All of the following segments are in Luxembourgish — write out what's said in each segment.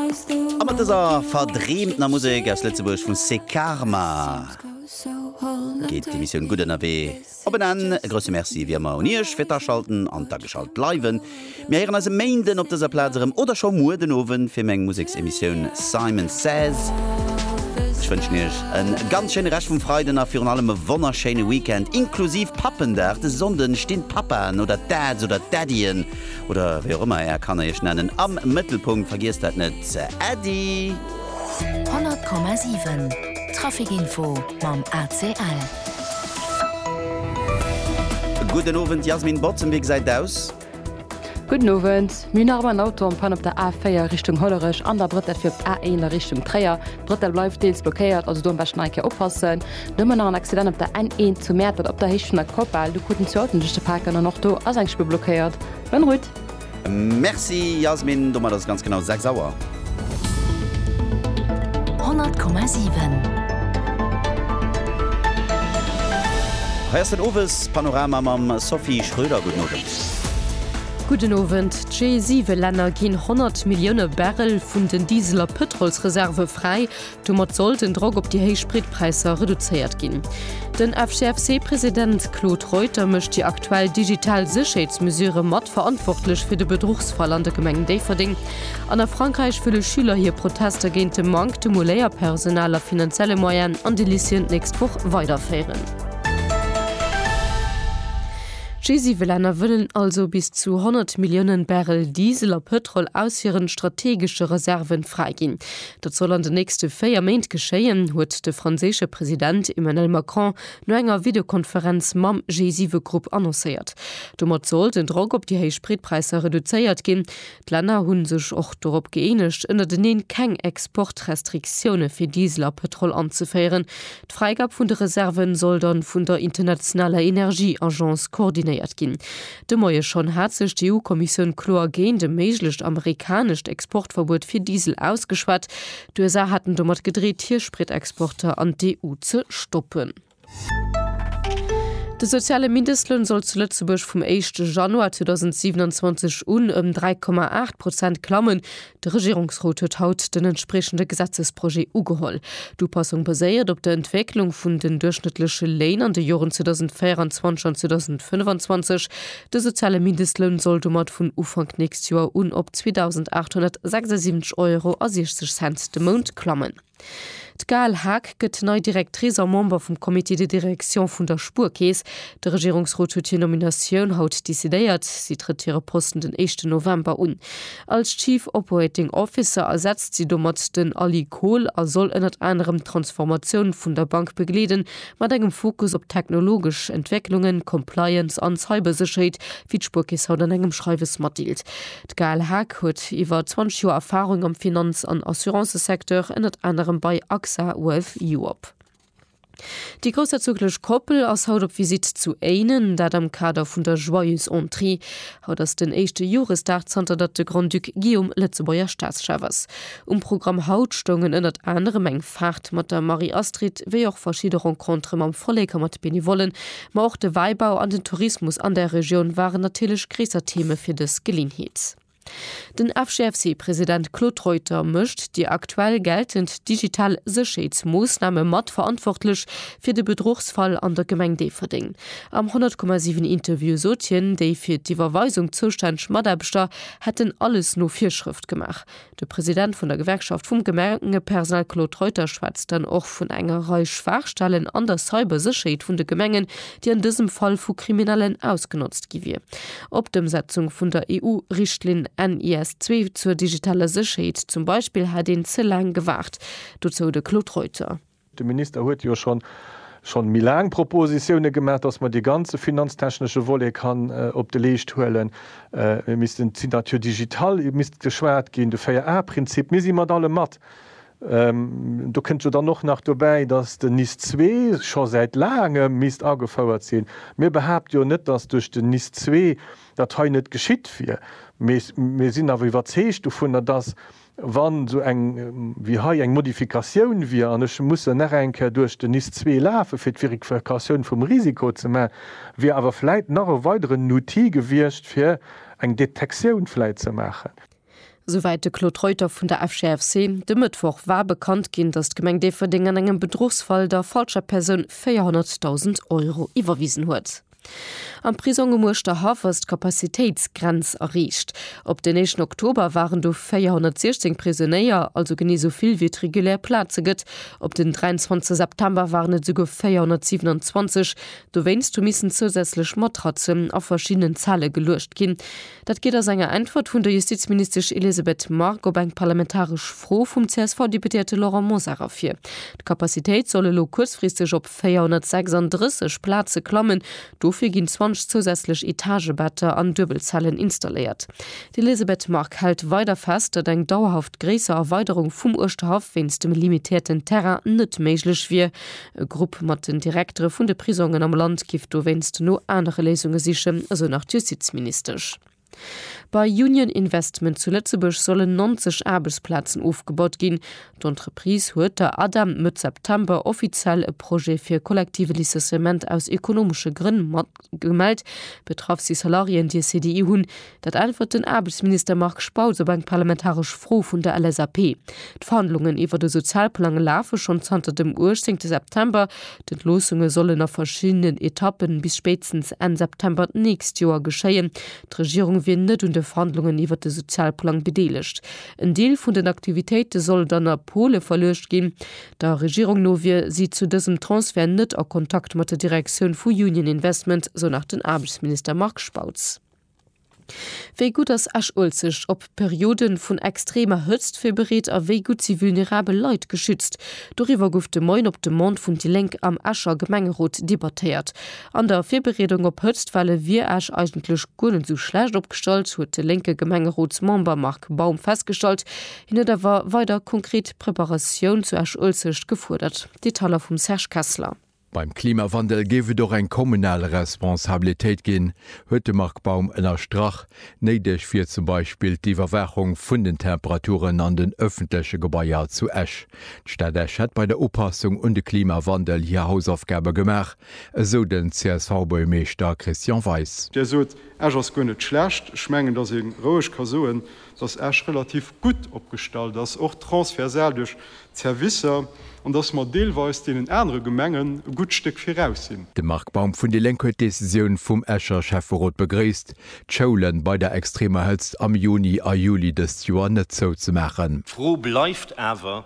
A mat dëser verdreemtener Musek aus Lëtzebuerg vu C'est Karma geet d'Emissioun Gutt Ënnerwee op en Enn. E grousse Merci ewéi ëmmer un Iech fir d'Aschalten an d'Ageschalt bleiwen. Mir héieren eis e Méinden op dëser Plaz erëm oder scho muer den Owend fir méi eng Museksemissioun Simon Says. Ech wënschen Iech e ganz schéine Rescht vum Freiden a virun allem e wonnerschéine Weekend inklusiv Pappendag. De Sonnde stinn d'Papaen oder d'Dads oder d'Daddyen oder wéi och ëmmer är Kanner iech nennen, am Mëttelpunkt. Vergiesst dat net, Äddi! 100,7 Traficinfo mam ACL. Gudden Owend, Jasmin Bottem, wéi gesäit et aus? Gudden Owend, Mir hunn nach ëmmer en Auto en panne op der A4 Richtung Hollerech an da brëtt dat fir op d'A1 a Richtung Tréier. D'Bretelle bleift deels blockéiert, also do am beschten nach eng Kéier oppassen. Nëmmen nach en Accident op der N1 zu Mäertert op der Héicht vun der Kopal, do kruten zwee Autoen sech ze paken an och do ass eng Spuer blockéiert. Bonne route! Merci Yasmin, domat ass et ganz genau 6 Auer. 100,7. Hei ass den Owespanorama mam Sophie Schröder. Gudden Owend. Gudden Owend. D'G7-Länner ginn 100 Millioune Barrel vun den Diesel a Pëtrolsreserve fräi. Domat soll den Drock op déi héich Spritpräisser reduzéiert ginn. Den FCFC-President Claude Reuter mécht déi aktuell digital Sécherheetsmesurë mat verantwortlech fir de Bedruchsfall an der Gemeng Déifferdeng. An a Frankräich wëlle Schüler hir Protester géint de Manktem u Léierpersonal a finanzielle Moyenen an de Lycéeën d'nächst Woch weiderféieren. D'G7-Länner wëllen also bis zu 100 Milliounen Barrel Diesel a Pëtrol aus hiren strategesche Reserven fräiginn. Dat soll an den nächste véier Méint geschéien, huet de franséische President Emmanuel Macron no enger Videokonferenz mam G7-Grupp annoncéiert. Domat soll den Drock op déi héich Spritpräisser reduzéiert ginn. D'Länner hu sech och dorop gëeenegt, ënnerteneen keng Exportrestriktioune fir Diesel a Pëtrol anzeféieren. D'Fräigab vun de Reserve soll da vun der internationaler Energieagence koordinéiert ginn. De Moie schonn hat sech d'EU-Kommissioun kloer géint e méiglecht amerikanescht Exportverbuet fir Diesel ausgeschwat. D'USA haten domat gedreet, hir Spritexporter an d'EU ze stoppen. De soziale Mindestloun soll zu Lëtzebuerg vum éischte Januar 2027 un ëm 3,8 Prozent klammen. De Regierungsrot huet haut den entspriechende Gesetzesprojet ugeholl. D'Upassung baséiert op der Entwécklung vun den duerchschnëttleche Léin an de Joren 2024 an 2025. De soziale Mindestloun soll domat vun Ufank nächst Joer un op 2.876,60 Euro de Mount klammen. D'Gaëlle Haag gëtt nei Directrice a Member vum Comité de direction vun der Spuerkeess. De Regierungsrot huet hir Nominatioun haut decidéiert. Si trëtt hire Posten den éischten November un. Als Chief Operating Officer ersetzt si domat den Ali Kohl a soll ënnert anerem d'Transformatioun vun der Bank begleeden, mat engem Fokus op technologesch Entwécklungen, Compliance an Cybersécherheet, wéi d'Spuerkeess haut an engem Schreiwes matdeelt. D'Gaëlle Haag huet iwwer 20 Joer Erfarung am Finanz an Assurancesecteur, ënnert anerem bei AXA Wealth Europe. Déi groussherzoglech Koppel ass haut op Visitt zu Éinen, dat am Kader vun der Joyeuse Entrée. Haut ass den éischte Joresdag zanter datt de Grand-Duc Guillaume Lëtzebuerger Staatschef ass. Um Programm haut stoungen ënnert anerem eng Faart mat der Marie-Astrid, wéi och verschidde Rencontere mam Vollek a mat Benevollen, Ma och de Wäibau an den Tourismus an der Regioun waren natierlech gréisser Theme fir dës Geleeënheet. Den FGFC-President Claude Reuter mécht déi aktuell geltend digital Sécherheetsmoossname mat verantwortlech fir de Bedruchsfall an der Gemeng Déifferdeng. Am 100,7 Interview sot hien, déi fir d'Iwwerweisung zoustänneg Mataarbechter hätten alles no Virschrëft gemaach. De President vun der Gewerkschaft vum Gemengepersonal Claude Reuter schwätzt dann och vun enger Rei Schwaachstellen an der Cybersécherheet vun de Gemengen, déi an dësem Fall vu Kriminellen ausgenotzt gi wier. Op d'Ëmsetzung vun der EU-Richtlinn NIS2 zur digitaler Sécherheet zum Beispill hätt een ze laang gewaart. Dozou de Claude Reuter. De Minister huet jo schon schon méi laang Propositione gemaach, dass mer dee ganze finanztechnesche Volet kann op de Leescht huelen. Mir missten d'Signature digitale misst geschwat ginn, de 4A-Prinzip. Mir si mat allem mat. Do kënnt jo dann och nach dobäi, dass den NIS zwee scho säit laangem misst agefouert sinn. Mir behaapte jo net, dass duerch den NIS zwee dat hei net geschitt wier, mee mir sinn awer iwwerzeegt dovunner, dass Wa sou eng wéi hei eng Modifikatioun wier, an ech musse nach eng Kéier duerch den NIS zwee lafe fir d'Verifikatioun vum Risiko ze maachen, wier awer vläit nach e weideren Outil gewiescht fir eng Detektioun vläit ze maachen. Souwäit de Claude Reuter vun der FGFC. De Mëttwoch war bekannt ginn, datt d'Gemeng Déifferdeng an engem Bedruchsfall der falscher Persoun 400.000 Euro iwwerwisen huet. Am Prisong um Uerschterhaff ass d'Capacitéitsgrenz erreecht. Op den éischten Oktober waren do 416 Prisonéier, also genee esou vill wéi et regulär Plaze gëtt. Op den 23 September waren et esouguer 427. Dowéinst hu missen zousätzlech Matratzen a verschiddenen Zelle geluecht ginn. Dat geet aus enger Äntwert vun der Justizministesch Elisabeth Margue op eng parlamentaresch Fro vum CSV-Deputéierte Laurent Mosar ervir. D'Capacitéit soll elo kuerzfristeg op 436 Plaze klammen. Dofir ginn 20 zousätzlech Etagebetter an Duebelzellen installéiert. D'Elisabeth Margue hält weider fest, datt eng dauerhaft gréisser Erweiderung vum Uerschterhaff wéinst dem limitéierten Terrain net méiglech wier. E Grupp mat den Direktere vun de Prisongen am Land giff dowéinst no anere Léisunge sichen, esou nach d'Justizministesch. Bei Union Investment zu Lëtzebuerg sollen 90 Aarbechtsplazen ofgebaut ginn. D'Entreprise huet der ADEM Mëtt September offiziell e Projet fir e kollektive Licenciement aus ekonomesche Grënn mat. Gemellt betraff si Salariéen, déi e CDI hunn. Dat äntwert den Aarbechtsminister Marc Spautz op eng parlamentaresch Fro vun der LSAP. D'Verhandlungen iwwer de Sozialplang lafe schonn zanter dem 18 September. D'Entloossunge sollen a verschiddenen Etappen bis spéitstens Enn September d'nächst Joer geschéien. D'Regierung wier net un de Verhandlungen iwwer de Sozialplang bedeelegt. En Deel vun den Aktivitéite soll dann a Pole verluecht ginn. Der Regierung no wier si zu dësem Transfert net a Kontakt mat der Direktioun vu Union Investment, sou nach den Aarbechtsminister Marc Spautz. Wéi gutt ass Esch-Uelzecht op Periode vun extremer Hëtzt virbereet a wéi gutt si vulnerabel Leit geschützt? Doriwwer gouf de Moien op Demande vun déi Lénk am Escher Gemengerot debattéiert. An der Virbereedung op Hëtztwelle wier Esch eigentlech guer net esou schlecht opgestallt, huet de lénke Gemengerotsmember Marc Baum festgestallt. Hien huet awer weider konkret Preparatioun zu Esch-Uelzecht gefuerdert, Detailler vum Serge Kessler. Beim Klimawandel géif et och eng kommunal Responsabilitéit ginn, huet de Marc Baum ënnerstrach. Néideg wier zum Beispill d'Iwwerwaachung vun den Temperaturen an den ëffentleche Gebaier zu Esch. D'Stad Esch hätt bei der Upassung un de Klimawandel hir Hausaufgabe gemaach, esou den CSV-Buergermeeschter Christian Weis. Där sot, Esch ass guer net schlecht. Ech mengen, datt ee roueg ka soen, dass Esch relativ gutt opgestallt ass, och transversal duerch d'Servicer, an dass mer deelweis deenen anere Gemengen e gutt Stéck viraus sinn. De Marc Baum vun déi Lénk huet d'Decisioun vum Escher Schäfferot begréisst, d'Schoule bei der extremer Hëtzt am Juni a Juli dëst Joer net zouzemaachen. D'Fro bleift awer,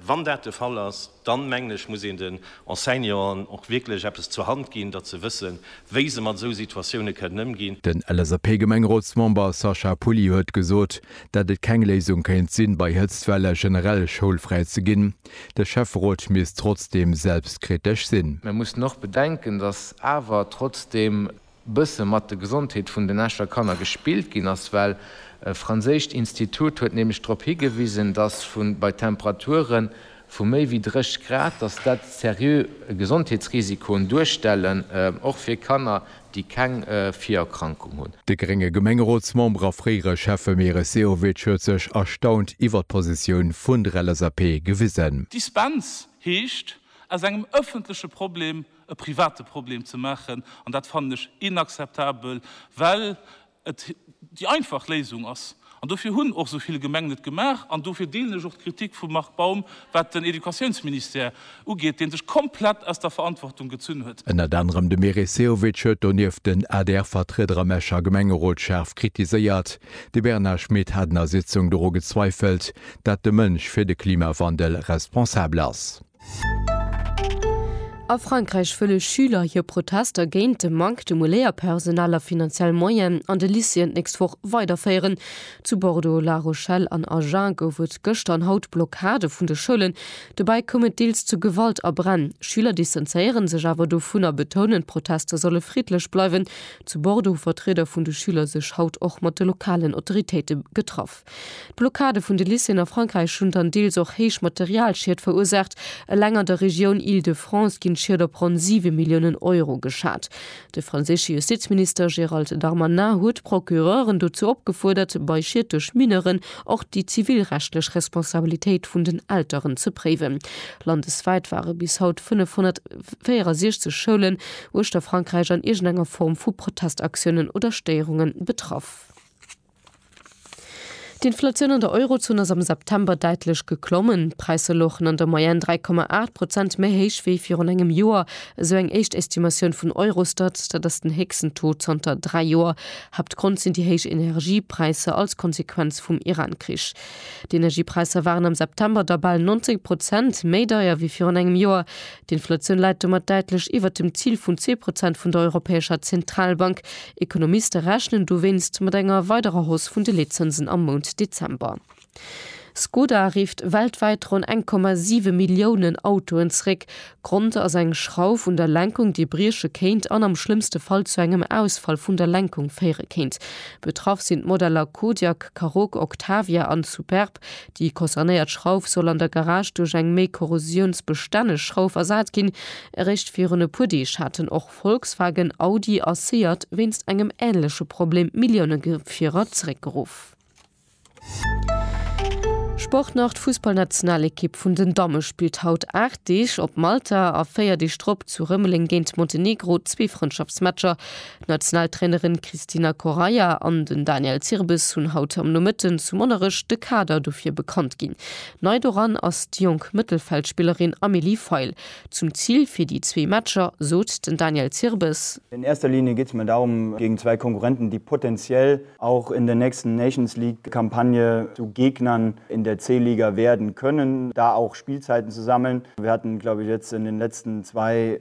Wann dat de Fall ass, dann, mengen ech, muss een den Enseignanten och wierklech eppes zur Hand ginn, datt se wëssen, wéi se mat esou Situatioune kënnen ëmginn. Den LSAP-Gemengrotsmember Sacha Pouly huet gesot, dat et keng Léisung kéint sinn, bei Hëtztwelle generell schoulfräi ze ginn. De Schäfferot misst trotzdeem selbstkritesch sinn. Mir mussen och bedenken, datt awer trotzdeem bësse mat de Gesondheet vun den Escher Kanner gespillt ginn ass, well e franséischt Institut huet nämlech drop higewisen, dass vu bei Temperature vu méi wéi 30 Grad, dass dat seriö Gesondheetsrisikoen duerstellen, och fir Kanner, déi keng Virerkrankung hunn. De grénge Gemengerotsmember a fréiere Schäffe Meris Sehovic huet sech erstaunt iwwert d'Positioun vun der LSAP gewisen. Dispens heescht, aus engem ëffentleche Problem e private Problem ze maachen, an dat fannen ech inakzeptabel, well et déi einfach Léisung ass. An dofir hunn och esou vill Gemengen et gemaach an dofir deelen ech och d'Kritik vum Marc Baum, wat den Educatiounsministère ugeet, dee sech komplett aus der Verantwortung gezunn huet. Ënnert anerem de Meris Sehovic huet donieft den ADR-Vertrieder am Escher Gemengerot schaarf kritiséiert. De Bernard Schmit hat an der Sitzung doru gezweifelt, dat de Mënsch fir de Klimawandel responsabel ass. A Frankräich wëlle Schüler hir Protester géint de Manque de Moléierpersonal a finanziell Moyen an de Lycéeën d'nächst Woch weiderféieren. Zu Bordeaux, La Rochelle an Agen gouf et gëschter an haut Blockade vun de Schoulen. Dobäi koum et deels zu Gewalt a Bränn. Schüler distanzéiere sech awer dovun a betounen, d'Protester solle friddlech bleiwen. Zu Bordeaux hu Vertrieder vun de Schüler sech haut och mat de lokalen Autoritéite getraff. D'Blockade vun de Lycéeën a Frankräich hunn dann deels och héich Materialschied verursaacht. Eleng an der Regioun Île-de-France ginn d'Schied op ronn 7 Milliounen Euro geschat. De franséische Justizminister Gérald Darmanin huet d'Procureuren dozou opgefuerdert, bei Schied duerch Mineuren och déi zivilrechtlech Responsabilitéit vun den Elteren ze préiwen. Landeswäit ware bis haut 564 Schoulen uechter Frankräich an iergendenger Form vu Protestaktiounen oder Stéierunge betraff. D'Inflatioun an der Eurozon ass am September däitlech geklommen. D'Präisser louchen an der Moyenne 3,8 Prozent méi héich wéi virun engem Joer, esou eng éischt Estimatioun vun Eurostat. Dat ass den héchsten Taux zanter dräi Joer. Haaptgrond sinn déi héich Energiepräisser als Konsequenz vum Iran-Krich. D'Energiepräisser waren am September da bal 90 Prozent méi deier wéi virun engem Joer. D'Inflatioun läit domat däitlech iwwert dem Zil vun zwee Prozent vun der Europäescher Zentralbank. Ekonomiste rechnen dowéinst mat enger weiderer Hausse vun de Leetzënsen am Mount Dezember. Skoda rifft weltwäit ronn 1,7 Milliounen Autoen zeréck. Grond ass eng Schrauf un der Lenkung, déi brieche kéint an am schlëmmste Fall zu engem Ausfall vun der Lenkung féiere kéint. Betraff sinn d'Modeller Kodiaq, Karoq, Octavia an Superb. Déi concernéiert Schrauf soll an der Garage duerch eng méi korrosiounsbestänneg Schrauf ersat ginn. Eréischt virun e puer Deeg haten och Volkswagen, Audi a Seat wéinst engem änleche Problem Milliounegefierer zeréckgeruff. Sport nach, D'Fussballnationalekipp vun den Damme spillt haut 8 Deeg op Malta a 4 Deeg drop zu Rëmeleng géint Montenegro, zwee Frëndschaftsmatcher D'Nationaltrainerin Cristina Correia an den Daniel Zirbes hunn haut am Nomëtten zu Monnerech de Kader dofir bekannt ginn. Nei doran ass déi jonk Mëttelfeldspillerin Amélie Feil. Zum Zil fir déi zwee Matcher sot den Daniel Zirbes. In erster Linie geht's mir darum, gegen zwei Konkurrenten, die potenziell auch in der nächsten Nations League Kampagne zu Gegnern in der C-Liga werden können, da auch Spielzeiten zu sammeln. Wir hatten, glaube ich, jetzt in den letzten zwei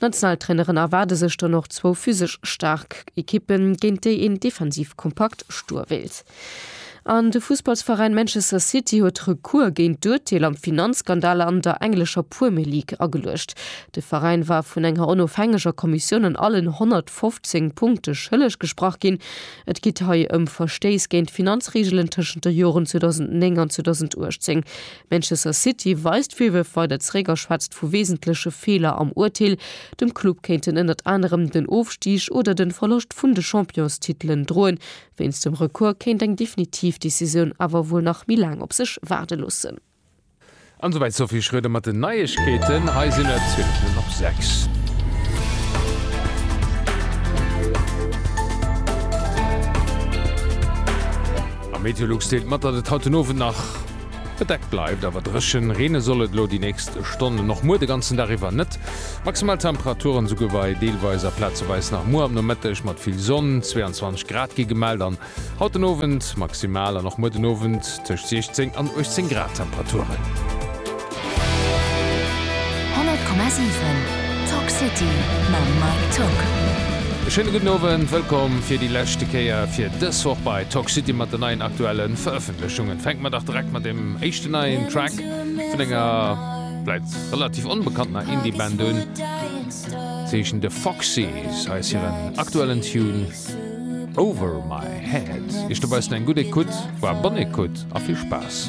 D'Nationaltraineren erwaarde sech dann och zwou physesch staark Ekippen, géint déi een defensiv kompakt stoe wéilt. An de Fussballsveräin Manchester City huet Recours géint d'Urteel am Finanzskandal an der englescher Premier League ageluecht. De Veräin war vun enger onofhängeger Kommissioun an allen 115 Punkte schëlleg gesprach ginn. Et geet hei ëm Verstéiss géint d'Finanzreegelen tëschent de Joren 2009 an 2018. Manchester City weist Virwërf weider zeréck a schwätzt vu wesentleche Feeler am Urteel. Dem Club kéinten ënnert anerem den Ofstig oder de Verloscht vun de Championstitelen droen. Wéinst dem Recours kéint eng definitiv Decisioun awer wuel nach méi laang op sech waarde loossen. An esou wäit d'Sophie Schröder mat den Neiegkeeten. Hei sinn et 20 Minutten op 6. Meteolux deelt mat, datt et haut den Owend nach. Bedeckt bleift awer dréchen, reene soll et elo déi nächst Stonnen och muer de ganzen Dag iwwer net. Maximal Temperaturen esouguer wei deelweis a plazeweis nach muer am Nomëtteg mat vill Sonn, 22 Grad gi gemellt an haut den Owend maximal an och muer den Owend tëscht 16 an 18 Grad Temperaturen. 100,7 Tock City mam Mike Tock. E schéine gudden Owend, wëllkomm fir déi leschte Kéier fir dës Woch bei Tock City mat den neien aktuellen Verëffentlechungen. Lech Jongen, fänke mer dach direkt mat deem éischten neien Track vun enger vläit relativ onbekanntener Indie-Band un. Si heeschen The Foxys. Hei ass hiren aktuellen Tune Over My Head. Iech dobaussen eng gutt Ecoute, voire bonne Ecoute a vill Spaass!